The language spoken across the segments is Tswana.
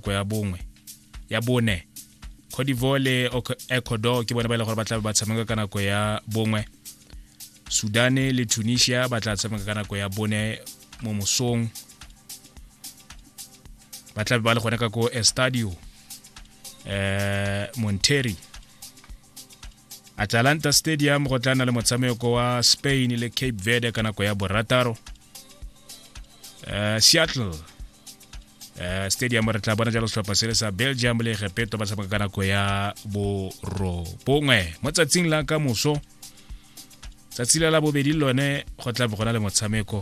ko ya bongwe ya bone Cote d'Ivoire le Ecuador ke bone ba ile e gore ba tla ba tshameka ka nako ya bongwe Sudan le Tunisia ba tla tshameka ka nako ya bone mo mosong ba tla ba le gone ka ko Estadio eh Monterrey Atalanta Stadium go tla na le motshameko wa Spain le Cape Verde ka nako ya borataro eh Seattle eh, stadium re tla bona jalo setlhopha se le sa belgium le egepeto ba tshameka ka nako ya borobongwe mo tsatsing la ka moso tsatsi la la bobedi lone go tla go na le motshameko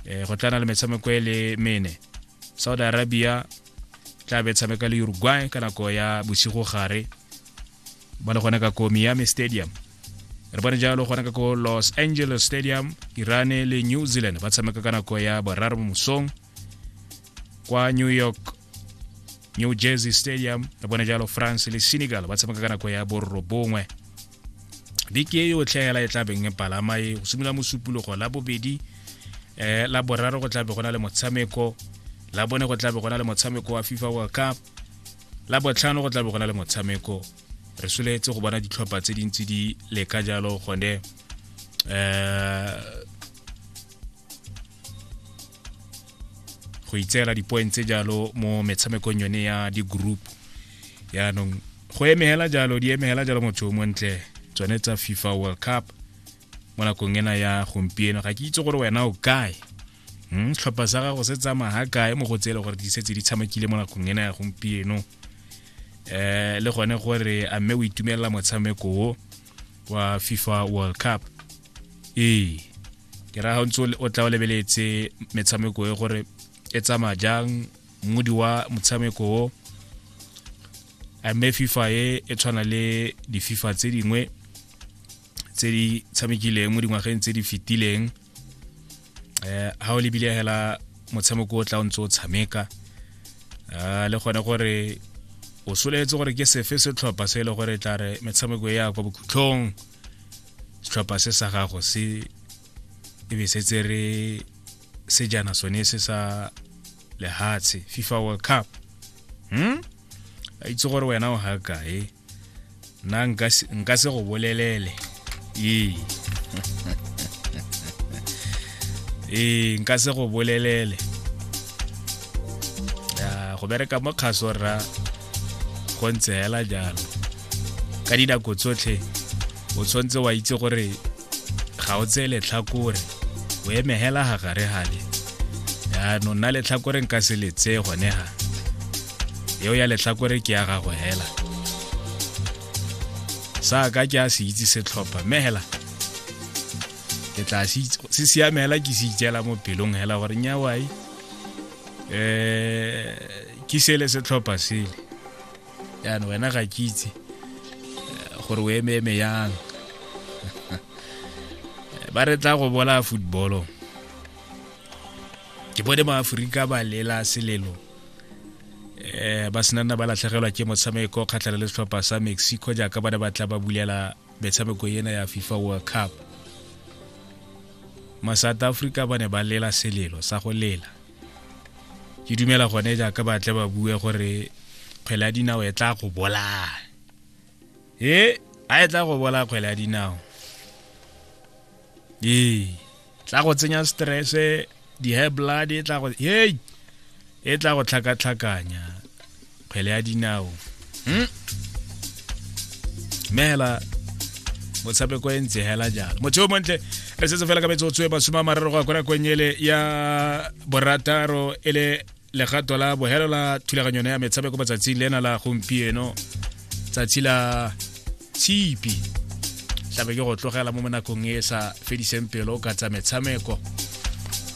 um go tla na le metshameko e le mene saudi arabia tla be tshameka le uruguay ka nako ya bosigo gare ba le gona ka ko miami stadium re bone jalo gona ka ko los angeles stadium irane le new zealand ba tshameka ka nako ya boraro mo mosong kwa new york new jersey stadium re bone jalo france le senegal ba tshameka ka nako ya borobongwe dike e yotlhe hela e tlabeng e palama e go simolola mosupologo la bobedi um la boraro go tlabe go na le motshameko la bone go tlabe go na le motshameko wa fifa world cup la botlhano go tla bo go na le motshameko re soletse go bona ditlhopha tse dintsi di leka jalo gone um go itseela dipoeng tse jalo mo metshamekong yone ya di-group yaanong go emegela jalo di emegela jalo motho o montle tsone tsa fifa world cup mo nakong ena ya gompieno ga ke itse gore wena o kae hmm, tlhopha sa gago se tsamaya ga kae mo go tseele gore di setse di tshamekile mo nakong ena ya gompieno um le gone gore a mme o itumelela motshameko o wa fifa world cup ee ke raga ntse o tla o lebeletse metshameko e gore e tsamaya jang mmodi wa motshameko o a mme fifa e e tshwana le dififa tse dingwe tse di tshamekileng mo dingwageng tse di fetileng eh ha o lebile hela motshameko o tla o ntse o tshameka ah, le gone gore o soletse gore ke sefe setlhopha se e le gore e tla re metshameko e ya kwa bokhutlhong setlhopha se sa gago se e be se tsere sejana sone se sa lehatshe fifa world cup hmm? a itse gore wena o ga kae nna nka se- nka se go bolelele ee ee nka se go bolelele Ya, go bereka mo kgaso rra go ntse hela jalo ka dinako tsotlhe o tshwanetse wa itse gore ga o tseye letlhakore o eme hela ga gare gale yaanong nna letlhakore nka se le tseye gone ga eo ya letlhakore ke ya gago hela sa ka ke a se itse setlhopha mme hela ke tla se siame hela ke se itseela mo pelong hela gore nyawai um eh, ke sele setlhopha sele yana wena ga ke itse eh, gore o eme eme yang ba re tla go bola footballong ke bone maaforika ba lela selelo um ba senanna ba latlhegelwa ke motshameko kgatlhana le setlhopha sa mexico jaaka ba ne ba tla ba bulela metshameko ena ya fifa world cup ma-south africa ba ne ba lela selelo sa go lela ke dumela gone jaaka ba tle ba bue gore kgwele ya dinao e tla go bolaya e a e tla go bolaya kgwele ya dinao ee tla go tsenya stresse di-high blood e tla go hey e tla go tlhakatlhakanya kgwele ya dinao hmm? mme hela motshameko e ntse hela jalo motho yo montle re setse fela ka metsotso e masome a mararo go ya kona kwenyele ya borataro e le legato la bohelo la thulaganyo ya metshameko matsatsing le ena la gompieno tsatsi la tshipi tlabe ke go tlogela mo monakong e sa fediseng pelo ka tsa metshameko